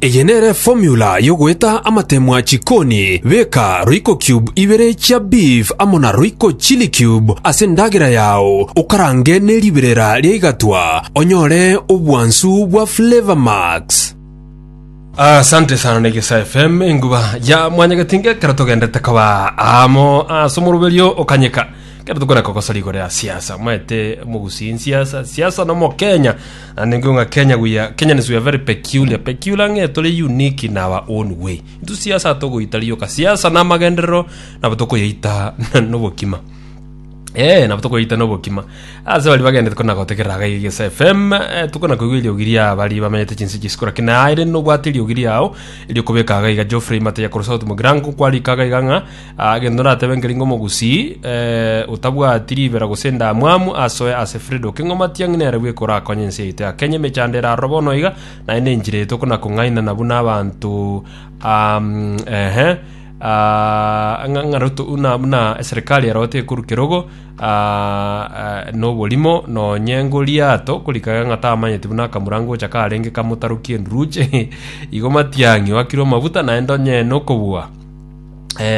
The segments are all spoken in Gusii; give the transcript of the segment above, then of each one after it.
Eye nere formula y'ogoeta amatemwa chikoni, beka royco cube ibere chia beef amo na royco chili cube ase endagera yao, okarange ne riberera ria igatwa, onyore obwansu bwa flavour max. Asante sana na Egesaa FM enguba ya mwanyagetinga ekero togendete koba amo ase omoroberio okanyeka ekero tokore kogosora igoro ya siasa mwaete mogusie nsiasa siasa na omokenya And ingo ng'a Kenya we are, Kenyans we are very peculiar. Peculiar ng'e tore unique in our own way. Intu siasa togoita rioka. Siasa na amagenderero nabo tokoyaita nobokima. Eh, nabo tokoyaita nobokima. Ase bari bagendete kona gotegerera aga igesa FM, eh, tokona koigwa eriogi ria bari bamenyete chinse chisiko lakini naye rende nobwate eriogi riao erio kobeka aga iga Geoffrey Mateya Korosot Mogirango kwarika aga iga ng'a Agento natebe nkeri ngomogusii otabwati ribera gose endamwamu asoe ase Fredo keng'oma tiang'i nere bwekorakonye ense yaito ya Kenya emechando eraroro bono iga naye nenchera yaito kona kong'ainana buna abanto buna eserikari ero tekoru kerogo noborimo nonye ngoriato korika iga ng'a tamanyeti buna akamura ngocha karenge kamotarokie enduruche igo matiang'i wakirwe amabuta naende onyene okobua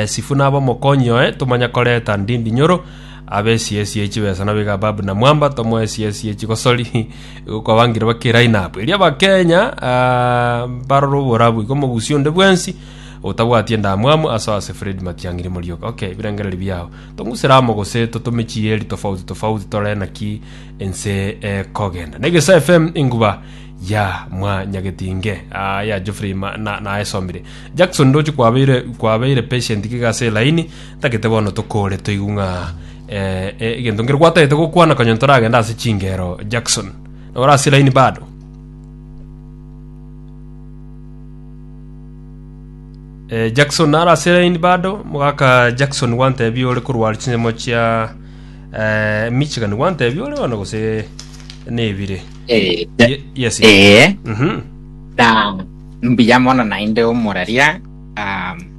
Sifu nabe omokonyi oye, tomanye koreta ndindi nyoro, abe esiyesi ye chibesa nabo iga Babu na Mwamba, tomoe esiyesi ye chigosori igo kwabangire bake eline up. Erio Abakenya ah, mbarore oborabu igo mogusi onde bwensi otabwati endamwamu aso ase Fred Matiang'i rimorioka. Ok, ebirengereri biao. Tong'usere amo gose totome chieri tofauti tofauti torore naki ense ekogenda. Na Egesaa FM enguba ya mwanyagetinge ah, ya Geoffrey ma, na, naesomire. Jackson ndoche kwabeire kwabeire patient iga ase line tagete bono tokore toigwe ng'a eh, eh, egento ngere gwatagete gokwana kanyoni toragenda ase chingero Jackson nora ase line bado eh, Jackson nara ase line bado mogaka Jackson gwantebi ore korwari chinyemo chia eh, Michigan gwantebi ore bono gose nebire Eh, Ye- yes yes. eh, Mhm. na Mbuya mono naende omoraria. Um,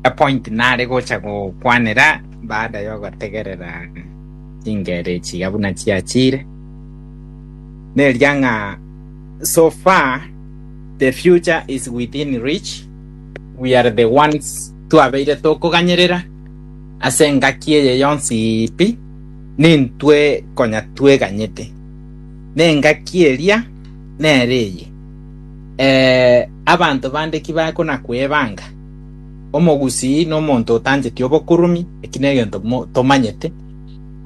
epoint nare gocha gokwanera baada yogotegerera chingere chiga buna chiachire neria ng'a so far the future is within reach we are the ones twabeire tokoganyerera ase engaki eye yonsi pi nintwe konya tweganyete nengaki eria nere eye Ee, abanto bande ki baye konakwebanga? Omogusii nomonto otancheti obokuruumi, eki negento tomanyete.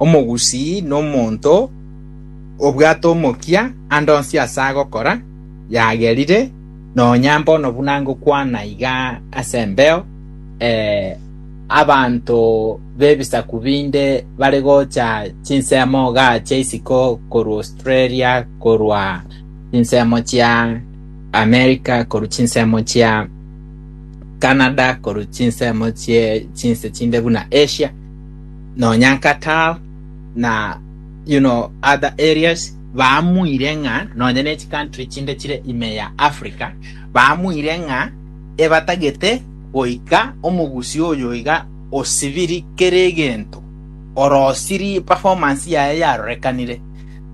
Omogusii nomonto obwate omokia ande onsi ase agokora, yagerire, nonya mbono buna ngokwana iga ase embeo, ee, abanto b'ebisaku binde bare gocha chinsemo igaa chia isiko korwa Australia, korwa chinsemo chia America, korwa chinsemo chia Canada, korwa chinsemo chie chinse chinde buna Asia, nonya Qatar na you know other areas, baamuire ng'a nonya ne chicountry chinde chire ime ya Africa, baamuire ng'a ebatagete goika omogusii oyo iga osibiri kera egento, orosirie performance yaye yarorekanire.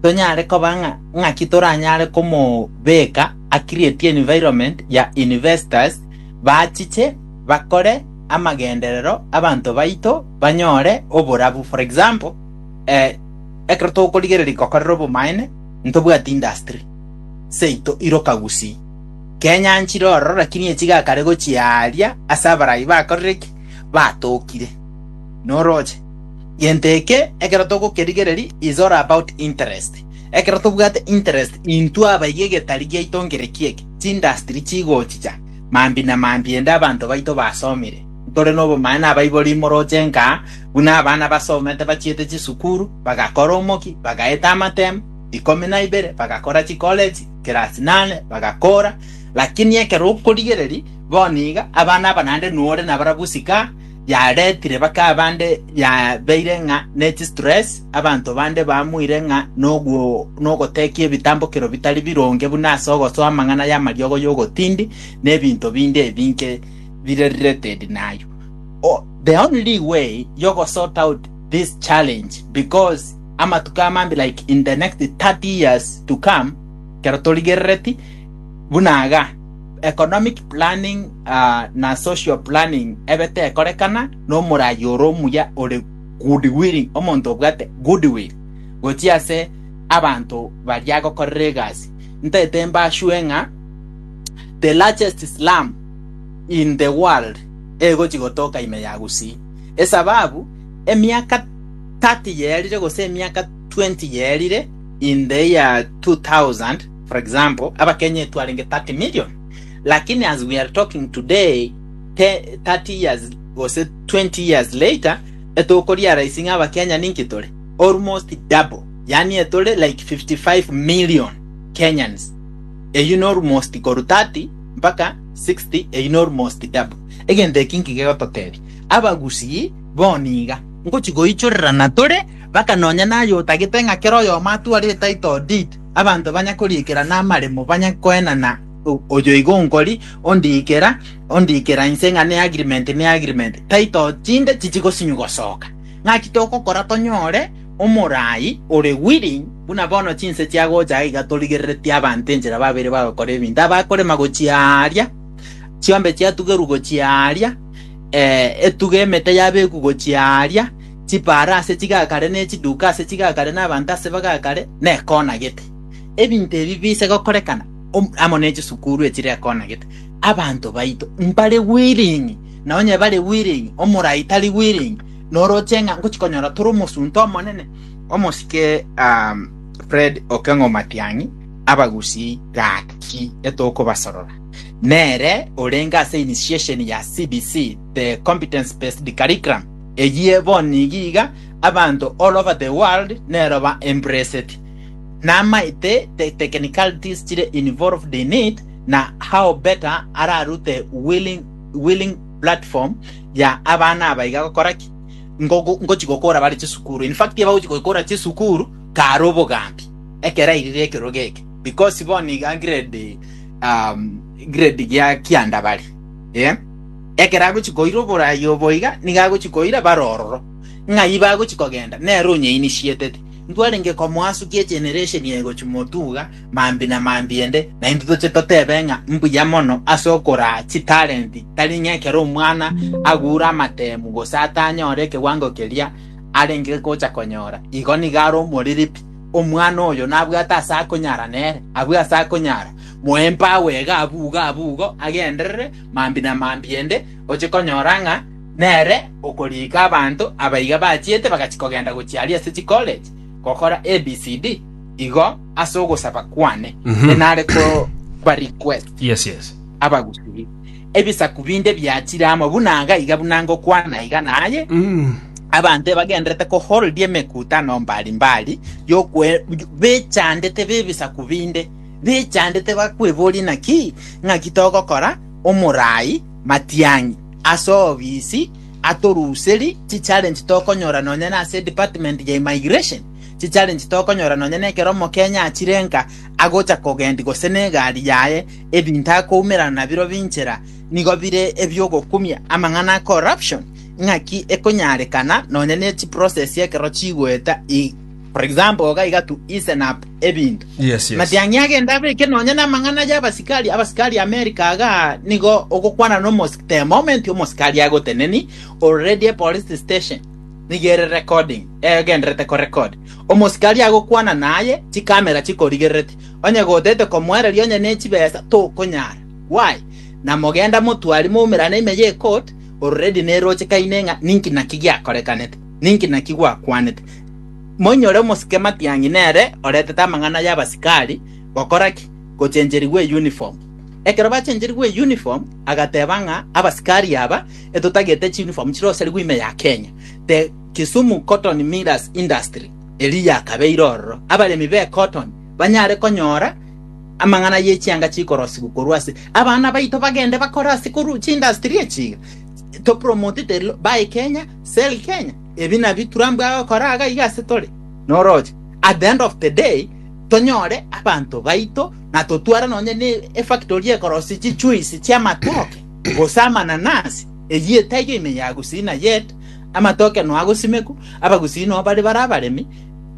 tonyare koba ng'a ng'aki toranyare komobeka a create environment ya investors bachiche bakore amagenderero abanto baito banyore oborabu. For example, eh, ekero tokorigereria gokorera obomaene, ntobwati industry seito iroka gusii. Kenya nchire ororo lakini echi gakare gochia aaria ase abarai bakorire ki? Batokire. Noroche? Gento eke ekero togokerigereria is all about interest. Ekero tobwate interest intwe abayiga egetari giaito nkere ki'eke, chindustry chigochicha mambi na mambi ende abanto baito basomire. Ntore nobomanya nabaibori imoroche nka buna abana basomete bachiete chisukuru, bagakora omoki, bagaeta amatemu, ikomi na ibere, bagakora chikoleji, class nane, bagakora, lakini ekero okorigereria bono iga abana aba naende nore nabarabwo sikaha, yaretire bakaba bande yabeire ng'a ne chistress, abanto bande baamuire ng'a nogotekia ebitambokero bitari bironge buna ase ogosoa amang'ana y'amariogo y'ogotindi, na ebinto binde ebinge bire related naye. Oh, the only way y'ogosort out this challenge because amatuko amambe like in the next 30 years to come, ekero torigerereti buna iga, economic planning na social planning ebe tekorekana nomorayi ore omuya ore good willing, omonto obwate good will gochia ase abanto baria agokorera egasi. Ntaete mbasue ng'a the largest slum in the world egochi gotoka ime ya Gusii esababu emiaka thirty yerire gose emiaka twenty yerire in the year two thousand. For example, abakenya etu arenge 30 million, lakini as we are talking today, te 30 years gose 20 years later, etokoriarising abakenya ninki tore? Almost double. Yani etore like 55 million Kenyans. Eyio ne almost koru 30 mpaka 60, eyio ne almost double. Egento eki nki gegototebia? Abagusii bo niga ngochi goichorerana tore, mpaka nonya naye otagete ng'a kera oyomo atware a title deed, Abanto banya koriikera namaremo banya koenana oyoigo onkori, ondiikera, ondiikera inse ng'a ne agreement ne agreement, title chinde chichi gosinywa gosoka. Ng'aki togokora tonyore omorai ore willing buna bono chinse chiagocha aiga torigereretie abanto enchera babere bagokora ebinto abakorema gochia aaria chiombe chiatugerwa gochia aaria etuga emete yabeku gochia aaria Chipaara ase chigakare, ne chiduka ase chigakare, na abanto ase bagakare, nekona gete. Ebinto ebi biise gokorekana amo ne chisukuru echire ekona gete. Abanto baito mbare willing, na onye bare willing, omorai tari willing, noroche ng'a ngochi konyora tore omosunte omonene. Omosike um, Fred Okeng'o Matiang'i, Abagusii gaki etokobasorora, nere orenge ase initiation ya CBC, the Competence Based Curriculum, Eyio bonigio iga abanto all over the world neroba embraced namaete the technicalities chire involved in it na how better ararute willing, willing platform ya abana aba iga gokora ki Ngogo- ngochi gokora bare chisukuru in fact aba gochi gokora chisukuru kare obogambi ekero airire ekerogo eke because bono iga grade um, grade gia kianda bare yeah? Ekero agochia koira oboraai obo iga, nigo agochia koira bare ororo. Ng'ai bagochia kogenda? Nere onyeinisieteti. Ntwarenge komoasukia egenereshen eye gochia motuga mambi na mambi ende, naintwe toche totebe ng'a mbuya mono ase okoraa chitalenti tari ng'a ekero omwana agure amateemu gose atanyore ekewango keria arenge gocha konyora, igo nigo are omoriribi. Omwana oyo nabwate ase akonyara nere, abwe ase akonyara, moe empagu iga abugo abugo agenderere Mambia na mambia inde, oche konyora ng'a nere okoriika abanto abaiga bachiete bagachia kogenda gochia aria ase chicollege gokora ABCD, igo ase ogosaba kwane inare kobarequest Yes, yes. abagusuria. Ebisaku binde biachire amo buna iga iga buna ngokwana iga naye, abanto ebagenderete koholdia emekutano mbari mbari yokwe bechandete b'ebisaku binde Bichandete bakweborie naki ng'aki togokora omorai matiang'i ase obisi atoruserie chichallenge tokonyora nonya nase department ya immigration, chichallenge tokonyora nonya nekero omokenya achire nka agocha kogendi gose negari yaye ebinto akoumerana nabiro binchera nigo bire ebiogokumia amang'ana a corruption ng'aki ekonyarekana nonya nechiprocess ekero chigoeta. For example, iga iga to easen up ebinto. Yes, yes. Matiang'i agende abeke nonya namang'ana y'abasikari abasikari America aga nigo ogokwana nomos the moment omosikari agoteneni already a police station nigo ere recording egenderete ko record omosikari agokwana naye chikamera chikorigererete onye gotete komoereria onye ne chibesa tokonyara why na mogenda motwari moumerane ime ye court already neroche kaine ng'a ninki naki giakorekanete Ninki naki gwakwanete? Moinyore omosike Matiang'i nere oretete amang'ana y'abasikari, gokora ki? Gochencherigwa eyuniform. Ekero bachencherigwa eyuniform agateba ng'a abasikari aba etotagete chiyuniform chirosarigwe ime ya Kenya. The Kisumu Cotton Millers Industry eria yakabeire ororo abaremi be cotton banyare konyora amang'ana ye chianga chikorosigwa korwa ase abana baito bagende bakore ase korwa chindustry echi iga topromote the lo- bae Kenya Sell Kenya, ebi nabio Trump agokora iga iga ase tore, noroche at the end of the day tonyore abanto baito na totware nonye n'efactory ekorosia chichuisi chi'amatoke gose amananasi, eyio etaiyo ime ya Gusii na yet amatoke no agosimekwa, Abagusii no bare bare abaremi,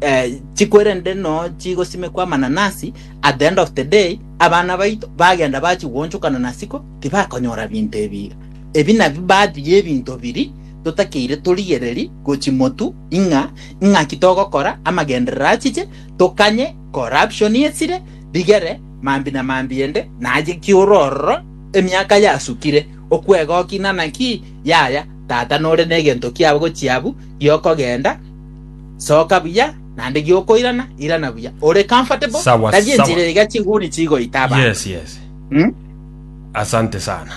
eh, chikwerende no chigosimekwa amananasi, at the end of the day abana baito bagenda bachigonchokana nasiko tibakonyora binto ebi iga. Ebi nabio baadhi y'ebinto biri totakeire torigereri go chimotu ing'a ing'aki togokora amagenderero achiche, tokanye corruption esire rigere mambi na mambi ende naye ki'ore ororo emiaka yasukire okwegoki nanaki yaya tata nore negento kiabo gochiabu giokogenda soka buya nande giokoirana irana buya ore comfortable Sawa, tari enchera sawa. iga chiguni chigoita abanto Yes, yes. Asante sana.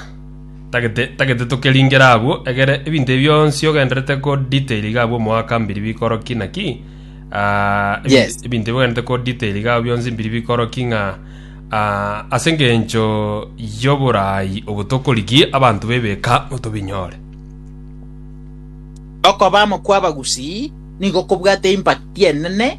Tagete tagete tokeringere agwo, egere ebinto ebi bionsi ogenderete ko detail iga abwo omoaka mbiri bikoro ki na ki. Ah, ebi- Yes. ebinto ebi ogenderete ko detail iga abwo bionsi mbiri bikoro ki ng'a ah, ase engencho y'oboraai obo tokorigia abanto b'ebeka motobinyore. Okoba amo kw'abagusii nigo kobwate impact enene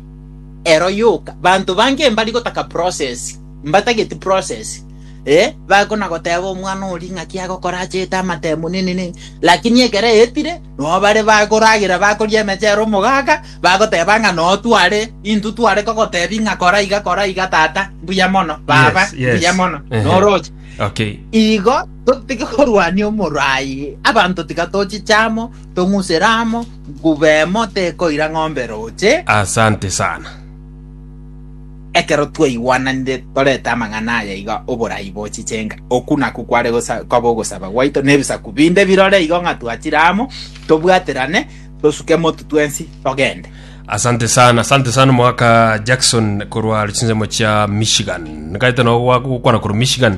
ero yoka. Banto bange mbari gotaka process, mbatageti process. Ee, bakonagoteba omwana oria ng'aki agokora achete amatemo nenene, lakini ekero aetire, nao bare bakoragera bakoria emechero omogaka, bagoteba ng'a noo tware, intwe tware kogotebia ng'a kora iga kora iga tata, mbuya mono, baba, Yes, yes. mbuya mono, Ehe. noroche. Okay. Igo totige korwania omoro aye, abanto tiga tochiche amo, tong'usere amo, nguba emo tekoira ng'ombe roche, Asante sana. Ekero twaigwananire torete amang'ana aya iga, oborai bo chichenga, oku nakwo kware gosa, kobe ogosaba gwaito, na ebisaku binde birore igo ng'a twachire amo, tobwaterane, tosuke motu twensi, togende. Asante sana, asante sana omogaka Jackson korwa chinsemo chia Michigan. Nkaete no gwa- gokwana korwa Michigan.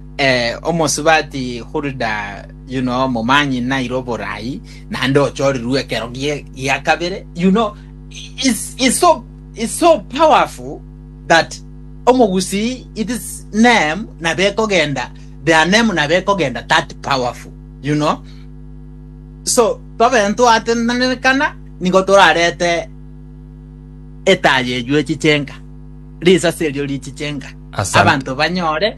Omosubati Hulda yuno omomanyi naire oboraai, naende ochorirwe ekero gia kabere, you know, is so is so powerful that omogusii it is name nabo ekogenda their name nabo ekogenda that powerful you know so tobe ntwatenenekana nigo torarete etaaya eywo echiche enka risasi erio richiche enka abanto banyore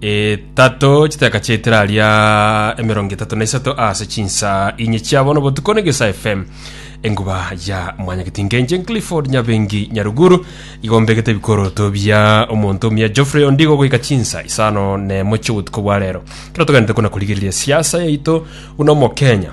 Etato, chiteka chia etera ria emerongo etato na isato ase chinsa inye chia bono botuko ne Gesa FM enguba ya mwanyageti ngenche Clifford Nyabengi Nyaruguru igombegete ebikoroto bia omonto omia Geoffrey Ondigo goika chinsa isano ne mochio botuko bwa rero kero togenderete kona korigereria siasa yaito uno mokenya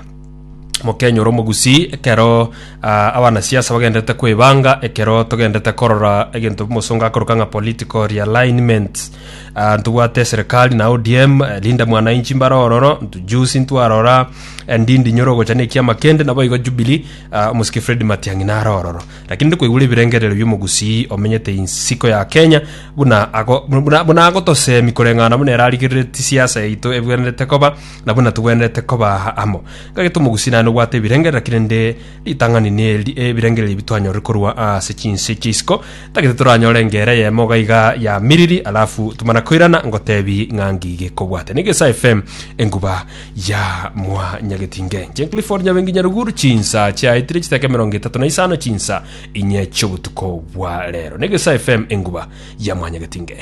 mokenyora omogusii ekero ah, abanasiasa bagendete kwebanga ekero togendete korora egento omosonga akoruka ng'a political realignment Ah, ntobwate serikali na odm eh, linda mwananchi mbare ororo ntujusi ntwarora eh, ndindi nyoro gocha ne ekiama kende nabo igo jubilee ah, omosiki fred matiang'i nare ororo lakini ndi koigura ebirengerero bi'omogusii omenyete insiko ya kenya buna ago- buna buna agotosemi koreng'ana buna erarigerereti siasa yaito ebwenerete koba na buna togwenerete koba aa amo, ng'ake tomogusie naende gobwata ebirenge, naki rende ritang'ani neri ebirengererio ebi twanyorire korwa ase chinse chia isiko, tagete toranyore engera eyemo iga iga ya miriri, alafu tomana koirana ngotebi ng'a ngi gekobwate. Nigo ase FM enguba ya mwanyagetinge. Inche Clifford Nyabengi Nyaruguru, chinsa chiaetire chitaka emerongo etato na isano chinsa inye chiobotuko bwa rero. Nigo ase FM enguba ya mwanyagetinge.